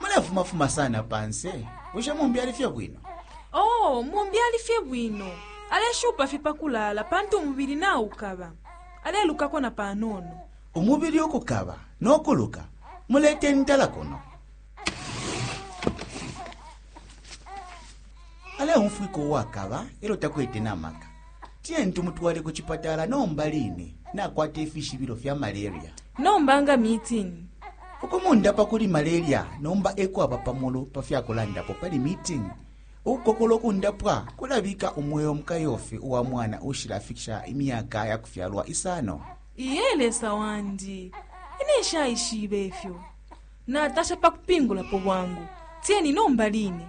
mulefumafuma sana panse bushe mumbi ali fye bwino oo mumbi ali fye bwino aleshupa fye pakulaala pantu umubili naukaba alelukako na panono umubili ukukaba n'okuluka mulete ntala kuno aleumfwika uwakaba e lyo takwete na maka tiyeni tumutwale ku cipatala nomba line nakwata ifishibilo fya malaria nomba nga mitini ukumundapa kuli malaria nomba ekwaba pamulu pa fya kulandapo pali mitini ukukokola ukundapwa kulabika umweo mukayofi uwa mwana ushilafikisha imyaka ya kufyalwa isano iye lesa wandi ine nshayishibe ifyo natasha pa kupingulapo bwangu tiyeni nomba line